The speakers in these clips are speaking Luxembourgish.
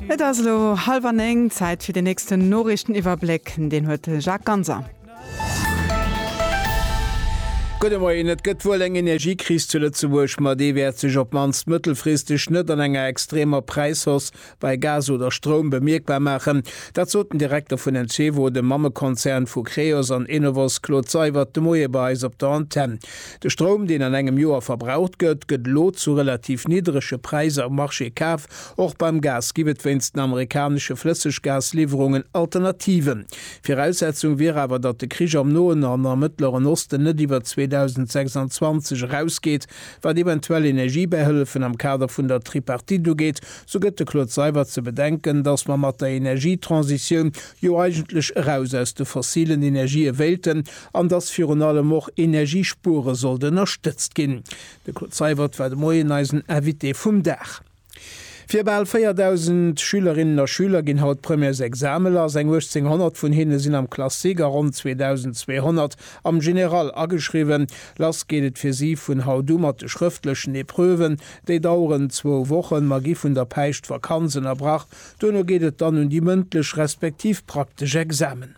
Et ass elo hallwer 9, Zäit fir den nächsten Noriichteniwwerbléck, deen huet de Jacques Ganser. Gudde Moien, Et gëtt wuel eng Energiekris zu Lëtzebuerg, ma déi wäert sech op d'mannst mëttelfristeg net an enger extremer Präishausse bei Gas oder Stroum bemierkbar maachen. Dat sot den Direkter vun Encevo, dem Mammekonzern vu Creos an Enovos, Claude Seywert de Moie bei eis op der Antenn. De Stroum, deen an engem Joer verbraucht gëtt, gëtt elo zu relativ niddrege Präisser um Marché kaf. Och beim Gas ginn et wéinst den amerikanesche Flësseggasliwwerungen Alternativen. Viraussetzung wier awer, datt de Krich am Noen an am Mëttleren Osten net iwwer 2026 erausgeet. Wat eventuell Energiebähëllefen am Kader vun der Tripartite ugeet, sou gëtt de Claude Seibert ze bedenken, datt mer mat der Energietransitioun jo eigentlech eraus aus de fossilen Energië wéilten, an dass virun allem och Energiespuere sollt ënnerstëtzt ginn. De Claude Seywert war de Moien eisen Invité vum Dag. Fir bal 4.000 Schülerinnen a Schüler ginn haut d'Premièresexamene lass. Eng 1.800 vun hinne sinn am Classique a ronn 2.200 am General ageschriwwen. Lass geet et fir si vun haut u mat de schrëftlechen Epreuven. Déi daueren zwou Wochen. Mer gi vun der Päischtvakanz ënnerbrach. Duerno geet et dann un déi mëndlech respektiv praktesch Examen.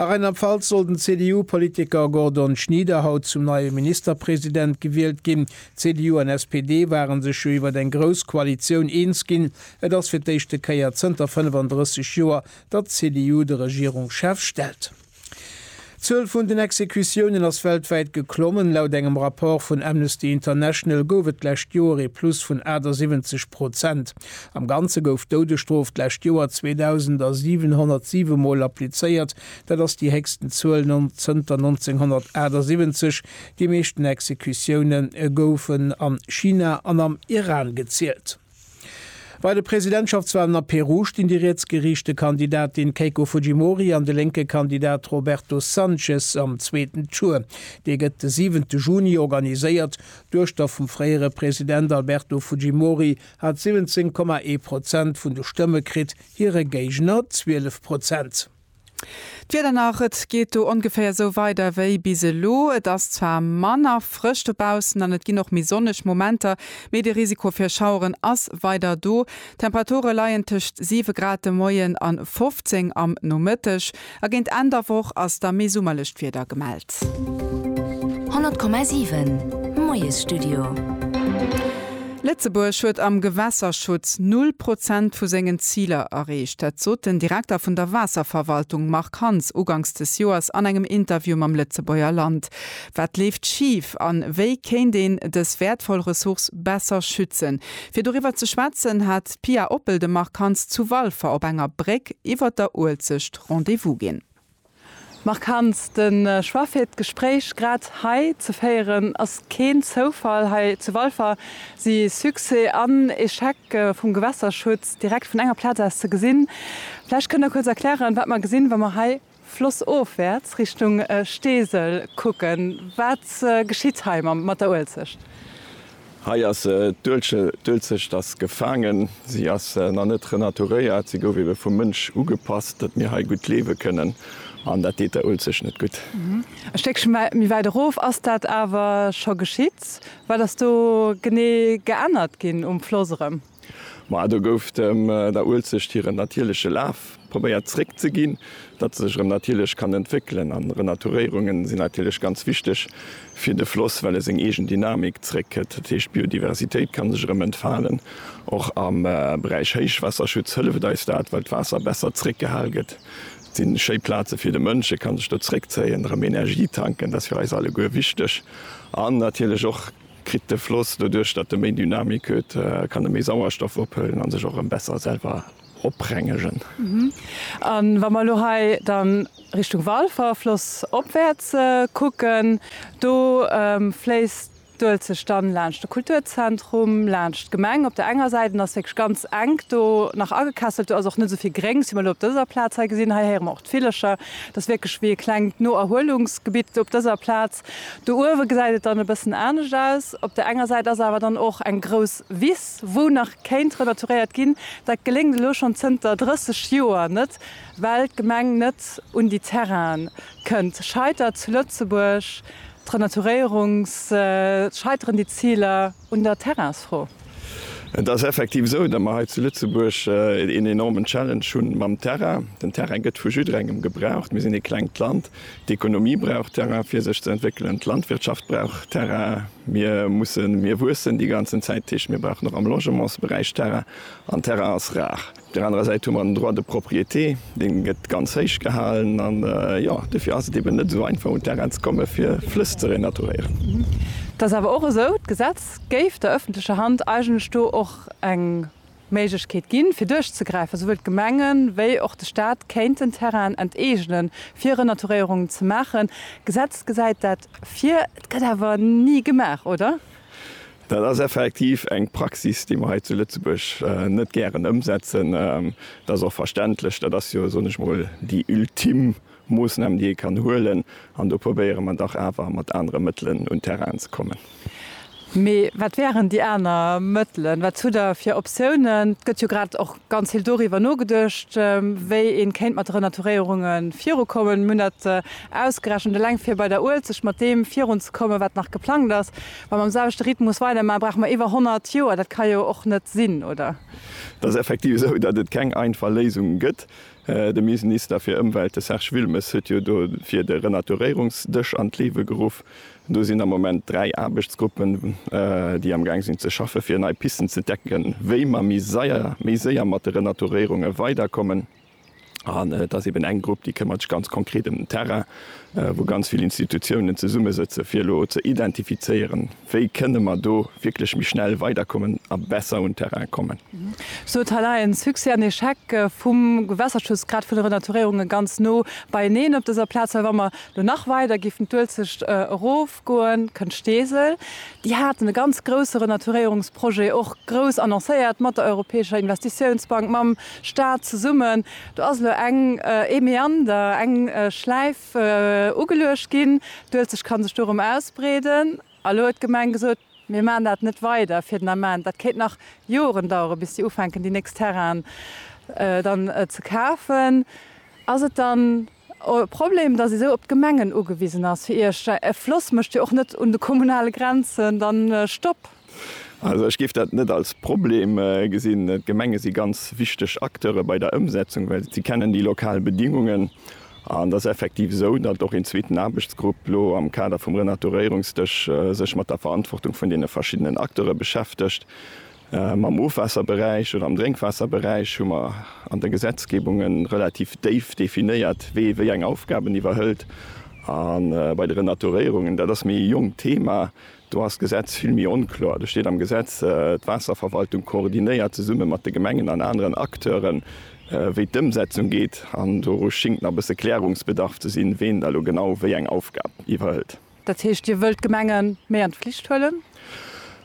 A Rheinland-Pfalz soll den CDU-Politiker Gordon Schnieder haut zum neie Ministerpresident gewielt ginn. CDU an SPD ware sech jo iwwer eng grouss Koalitioun eens ginn. Et ass fir d'éischte Kéier zënter 35 Joer, datt d'CDU de Regierungschef stellt. D'Zuel vun den Exekutiounen ass weltwäit geklommen. Laut engem Rapport vun Amnesty International gouf et d'lescht Joer ee Plus vun 78 Prozent. Am Ganze gouf d'Doudesstrof d'lescht Joer 2.707 Mol applizéiert, dat ass déi héchsten Zuel zënter 1978. Déi meeschten Exekutioune goufen a China an am Iran gezielt. Bei de Presidentschaftswalen a Peru stinn déi rietsgeriichte Kandidatin Keiko Fujimori an de lénke Kandidat Roberto Sanchez am zweeten Tour. Dee gëtt de siwente Juni organiséiert. D'Duechter vum fréiere President Alberto Fujimori, hat 17,1 Prozent vun de Stëmme kritt, hire Géigner 12 Prozent. D'Wieder nach, Et geet do ongeféier esou weider wéi bis elo. Et ass zwar manner frësch dobaussen an et ginn och méi sonneg Momenter, mee de Risiko fir Schaueren ass weider do. D'Temperature leien tëscht 7 Grad de Moien an 15 am Nomëtteg. A géint Enn der Woch ass da méi summerlecht Wieder gemellt. 100,7 Moiesstudio. Lëtzebuerg huet am Gewässerschutz null Prozent vu sengen Ziler erreecht. Dat sot den Direkter vun der Waasserverwaltung Marc Hans uganks des Joers an engem Interview mam Lëtzebuerger Land. Wat leeft schif an wéi kéint een dës wäertvoll Ressource besser schützen? Fir doriwwer ze schwätzen, hat d'Pia Oppel dem Marc Hanz zu Walfer op enger Bréck iwwer der Uelzecht Rendez-vous ginn. Marc Hanz, de Choix fir d'Gespréich grad hei ze féieren ass keen Zoufall. Hei zu Walfer si Succès an Echec vum Gewässerschutz direkt vun enger Plaz aus ze gesinn. Vläicht kënnt Der kuerz erklären, wat mer gesinn, wa mer hei flossofwäerts Richtung Steesel kucken. Wat geschitt hei mat der Uelzecht? Hei ass d'Uelzecht ass gefaangen. Si ass nach net renaturéiert. Si gouf ebe vum Mënsch ugepasst, datt mir hei gutt liewe kënnen. An dat deet der Uelzecht net gutt. E Stéckche méi wäit erof ass dat awer scho geschitt. Wat ass do genee geännert ginn um Floss erëm? Ma do gouf dem der Uelzecht hiren natierleche Laf probéiert zréck ze ginn, datt se sech erëm natierlech kann entwéckelen. An Renaturéierunge sinn natierlech ganz wichteg fir de Floss, well e seng eegen Dynamik zréck kritt. Dat heescht, d'Biodiversitéit kann sech erëm entfalen. Och am Beräich Héichwaasserschutz hëlleft eis dat, well d'Waasser besser zréck gehal gëtt. Et sinn schéi Plaze fir de Mënsch, e kann sech do zréck zéien, erëm Energie tanken, dat ass fir eis alleguer wichteg. An natierlech och Kritt de Floss, doduerch datt e méi Dynamik huet, kann e méi Sauerstoff ophëllen a sech och erëm besser selwer oprengegen. A wa mer elo hei dann Richtung Walfer, Floss opwäerts, kucken, do fléisst d'Uelzecht dann laanscht de Kulturzentrum, laanscht d'Gemeng op der enger Säit an ass wierklech ganz enk do nach agekesselt. Do ass och net esou vill Gréngs, wéi mer elo op dëser Plaz hei gesinn. Hei héiere mer och d'Villercher. Dat ass wierklech wéi e klengt Noerhuelungsgebitt op dëser Plaz. Do uewe gesäit et dann e bëssen anescht aus. Op der enger Säit ass awer dann och eng grouss Wiss, wou nach kéint renaturéiert ginn. Dat geléngt elo schonn zënter 30 Joer net, well d'Gemeng net un déi Terrainen kënnt. Scheitert zu Lëtzebuerg d'Renaturéierungs-, scheiteren déi Ziler? Un der Terrainsfro. Et ass effektiv esou, datt mer hei zu Lëtzebuerg een enormen Challenge hunn mam Terrain. Den Terrain gëtt vu jidderengem gebraucht. Mir sinn ee klengt Land. D'Ekonomie brauch Terrain, fir sech ze entwéckelen. D'Landwirtschaft brauch Terrain. Mir mussen, mir wuessen déi ganzen Zäit. Dat heescht, mir brauchen och am Logementsberäich Terrain. An Terrain ass rar. Op där anerer Säit hu mer den Droit de propriété, dee gëtt ganz héich gehalen. An jo, dofir ass et eben net esou einfach, un d'Terrainen ze kommen, fir Flëss ze renaturéieren. Et ass awer och esou, d'Gesetz géif der öffentlecher Hand eigentlech do och eng Méiglechkeet ginn, fir duerchzegräifen. Esouwuel d'Gemenge wéi och de Stat kéinten Terrainen enteegnen, fir Renaturéierungen ze maachen. D'Gesetz gesäit dat vir. Et gëtt awer ni gemaach, oder? Dat ass effektiv eng Praxis, déi mer hei zu Lëtzebuerg net gären ëmsetzen. Dat ass och verständlech. Dat ass jo, soen ech mol, déi ultim Moossnam, déi ee kann huelen. An do probéiere mer dach awer mat anere Mëttelen un Terrainen ze kommen. Mee wat wären déi aner Mëttelen? Wat hutt Der fir Optiounen? Et gëtt jo grad och ganz vill doriwwer nogeduecht, wéi ee kéint mat de Renaturéierunge virukommen. Mir hunn dat ausgerechent, eleng fir bei der Uelzecht mat deem virunzekommen, wat nach geplangt ass, Wa mer am selwechte Rhythmus weidermaachen, brauche mer iwwer 100 Joer. Dat ka jo och net sinn, oder? Et ass effektiv esou, datt et keng einfach Léisung gëtt. De Minsnister fir Ëmwelt, de Serge Wilmes, huet jo dofir de Renaturéierungsdësch an d'Liewe geruff. Do sinn am Moment dräi Aarbechtsgruppen, déi am Gaang sinn ze schaffe fir nei Pisten ze decken, wéi mer méi séier mat de Renaturéierunge weiderkommen. An et ass eben eng Grupp, déi këmmert sech ganz konkret ëm den Terrain, wou ganz vill Institutiounen zesummesëtzen, fir elo ze identifizéieren, wéi kënne mer do wierklech méi schnell weiderkommen a besser un Terrain kommen. Sou huet hei nach ee Succès an Echec vum Gewässerschutz, grad vun de Renaturéierunge ganz no beieneen op dëser Plaz. Well wa mer elo nach weider géifen d'Uelzecht erofgoen, kënnt Steesel. Déi haten e ganz grousse Renaturéierungsprojet och grouss annoncéiert mat der Europäescher Investitiounsbank, mam Stad zesummen. Do ass elo eng, ee Meander, eng Schläif ugeluecht ginn. D'Uelzecht ka sech do erëm ausbreeden. A elo huet d'Gemeng gesot, Mir maachen dat net weider fir den Ament. Dat kéint nach Joren daueren, bis déi ufänken, déi nächst Terrainen dann ze kafen. Ass et dann E Problem, dass ee sou op d'Gemengen ugewisen ass fir Iech. E Floss mécht jo och net un de kommunale Grenzen dann Stopp. Also ech géif dat net als Problem gesinn. D'Gemenge si ganz wichteg Acteure bei der Ëmsetzung, well si kennen déi lokal Bedingungen. An et ass effektiv esou, datt och een zweeten Aarbechtsgrupp elo am Kader vum Renaturéierungsdësch sech mat der Verantwortung vun deene verschiddenen Acteure beschäftegt. Am Ofwaasserberäich oder am Drénkwaasserberäich hu mer an de Gesetzgebunge relativ déif definéiert, wee wéi eng Aufgaben iwwerhëlt. A bei de Renaturéierungen, dat ass méi e jonkt Thema, do ass d'Gesetz vill méi onkloer. Do steet am Gesetz, D'Waasserverwaltung koordinéiert zesumme mat de Gemengen an aneren Acteuren, wéi d'Ëmsetzung geet. An do schingt nach e bësse Klärungsbedarf ze sinn, ween da lo genau wéi eng Aufgab iwwerhëlt. Dat heescht, Dir wëllt d'Gemenge méi an d'Flicht huelen?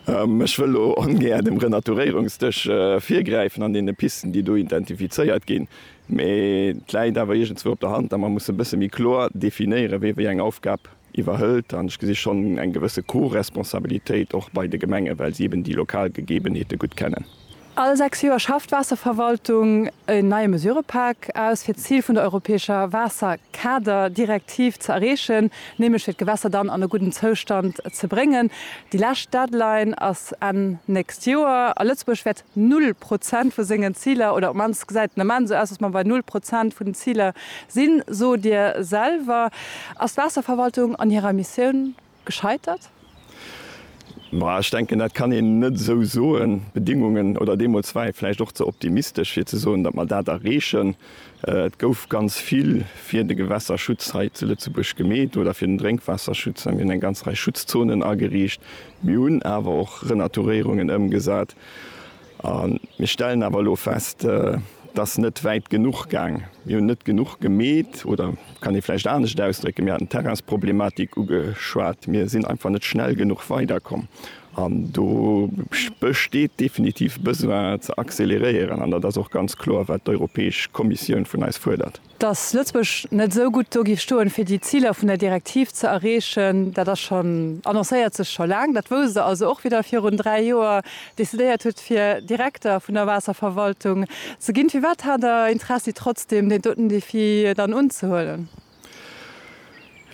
Ech wëll elo ongär dem Renaturéierungsdësch virgräifen an deene Pisten, déi do identifizéiert ginn. Mee et läit awer iergendzwou op der Hand, datt mer mussen e bësse méi kloer definéieren, wie wéi eng Aufgab iwwerhëlt. An ech gesi schonn eng gewësse Co-Responsabilitéit och bei de Gemengen, well si eben déi lokal Gegebenheete gutt kennen. All sechs Joer schafft d'Waasserverwaltung en neie Mesurëpak aus, fir d'Zil vun der europäescher Waasserkader-Direktiv ze erreechen, nämlech fir d'Gewässer dann an e gudden Zoustand ze bréngen. Déi lescht Deadline ass Enn nächst Joer a Lëtzebuerg wäert null Prozent vu sengen Ziler, oder op d'mannst gesäit den Ament esou aus, datt mer bei null Prozent vun den Ziler sinn. Sot Dir selwer, ass d'Waasserverwaltung an hirer Missioun gescheitert? Bah, ech denken, dat kann een net esou soen. D'Bedingungen, oder deemools war ee vläicht och ze optimistesch, fir ze soen, datt mer dat erreechen. Et gouf ganz vill fir de Gewässerschutz hei zu Lëtzebuerg gemeet oder fir den Drénkwaasserschutz. Mir hunn eng ganz Rei Schutzzonen ageriicht. Mir hunn awer och Renaturéierungen ëmgesat. A mir stellen awer elo fest, et ass net wäit genuch gaang. Mir hunn net genuch gemeet, oder kann ee vläicht anescht ausdrécken, mir haten d'Terrainsproblematik ugeschwat, mir sinn einfach net schnell genuch weiderkomm. An do besteet definitiv Besoin ze acceleréieren, an dat ass och ganz kloer, wat d'Europäesch Kommissioun vun eis fuerdert. Datt Lëtzebuerg net esou gutt do géif stoen, fir déi Ziler vun der Direktiv ze erreechen, dat ass schonn, annoncéiert sech scho laang. Dat wousst Der also och, wéi Der virun dräi Joer decidéiert hutt, fir Direkter vun der Waasserverwaltung ze ginn. Firwat hat Der Interessi trotzdeem, deen doten Defi dann unzehuelen?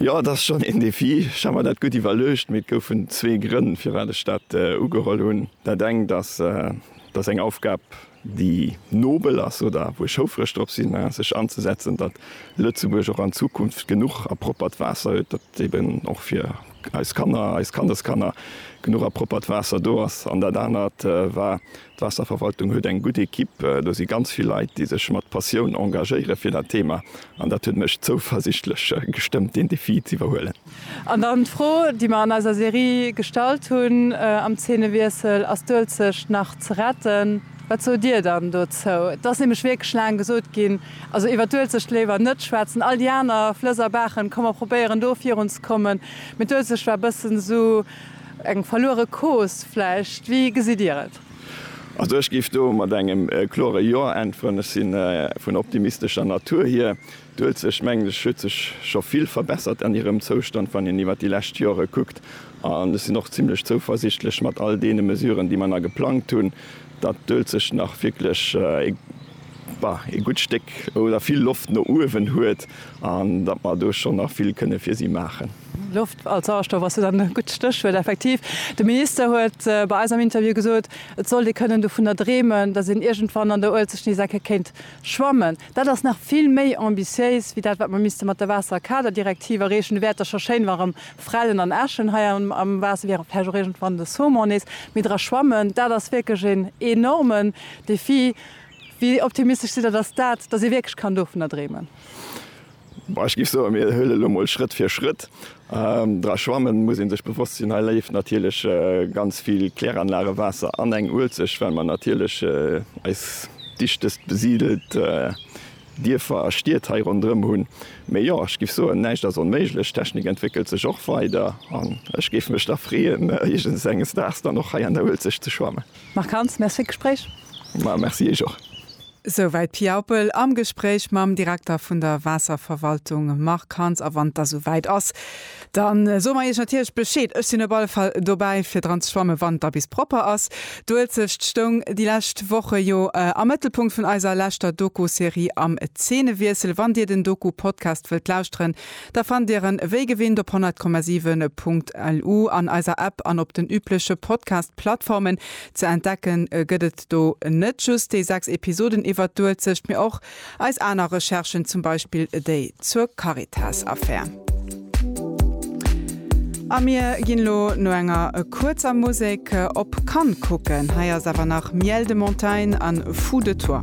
Jo, et ass schonn een Defi. Ech hat mer dat gutt iwwerluecht, mee et goufen zwee Grënn, firwat ech dat ugeholl hunn. Dat engt ass, datt eng Aufgab déi nobel ass oder wou ech houfreg drop sinn, sech anzesetzen, datt Lëtzebuerg och an Zukunft genuch a proppert Waasser huet, datt eben och fir eis Kanner, eis Kandeskanner genuch a proppert Waasser do ass. An dat anert war, d'Waasserverwaltung huet eng gutt Ekipp, do si ganz vill Leit, déi sech mat Passioun engagéiere fir dat Thema, an dat huet mech zouversichtlech gestëmmt, deen Defi z'iwwerhuelen. An dann d'Fro, déi mer an eiser Serie gestallt hunn am Zeenewiessel, Ass d'Uelzecht nach ze retten? Wat sot Dir dann dozou? Et ass nämlech wierklech laang gesot ginn, also iwwer d'Uelzecht léiwer net schwätzen, all déi aner Flëss a Baachen ka mer probéieren do virunzekommen, mee d'Uelzecht war e bëssen esou eng verluere Cause vläicht. Wéi gesitt Dir et? Also ech géif do mat engem klore Jo äntweren. Ech si vun optimistescher Natur hier. D'Uelzecht, mengen ech, huet sech scho vill verbessert an hirem Zoustand, wann een iwwert déi lescht Jore kuckt. An ech sinn och zimlech zouversichtlech, mat all deene Mesuren, déi mer nach geplangt hunn, datt d'Uelzecht nach wierklech ee, bah, ee gutt Stéck oder vill Loft no uewen huet an datt mer do schonn nach vill kënne fir si maachen. Loft als Sauerstoff ass jo dann e gutt Stéchwuert. Effektiv, de Minister huet bei eis am Interview gesot, et sollt ee kënnen dovunner dreemen, datt een iergendwann an der Uelzecht nees eng Kéier kéint schwammen. Dat ass nach vill méi ambitiéis wéi dat, wat mer misste mat der Waasserkaderdirektiv erreechen. Do wäert Der scho schéin wa rëm Frellen an Äschen hei am Waasser wieren, vläicht och iergendwann de Saumon nees méi dra schwammen. Dat ass wierklech een enormen Defi. Wéi optimistesch sidd Der, datt dat, datt ee wierklech kann dovunner dreemen? Bon, ech géif soen, mir huelen elo mol Schrëtt fir Schrëtt. Dra schwammen muss ee sech bewosst sinn. Hei léift natierlech ganz vill Kläranlagewaasser an eng Uelzecht, well mer natierlech eis dichtest besidelt Dierfer a Stied hei ronderëm hunn. Mee jo, ech géif soen, näischt ass onméiglech. D'Technik entwéckelt sech och weider an ech géif mech da freeën, iergends enges Daags dann och hei an der Uelzecht ze schwammen. Marc Hans, Merci fir d'Gespréich. Ma, Merci Iech och. Esouwäit Pia Oppel am Gespréich mam Direkter vun der Waasserverwaltung Marc Hans. A wann da souwäit ass, da soe mer Iech natierlech Bescheed. Ech sinn op alle Fall dobäi fir dran ze schwammen, wann da bis propper ass. D'Uelzecht stoung déi lescht Woche jo am Mëttelpunkt vun eiser leschter Doku-Serie am Zeenewiessel. Wann Dir den Doku-Podcast wëllt lauschteren, da fannt Dir en wéi gewinnt op 100,7.lu an eiser App an op den übleche Podcast-Plattformen. Ze entdecken gëtt et Do net just déi 6 Episoden iwwert d'Uelzecht, mee och eis aner Recherchen, zum Beispill déi zur Caritas-Affär. A mir ginn elo no enger kuerzer Musek op Cannes kucken. Hei ass awer nach Miel de Montagne an Fou de toi.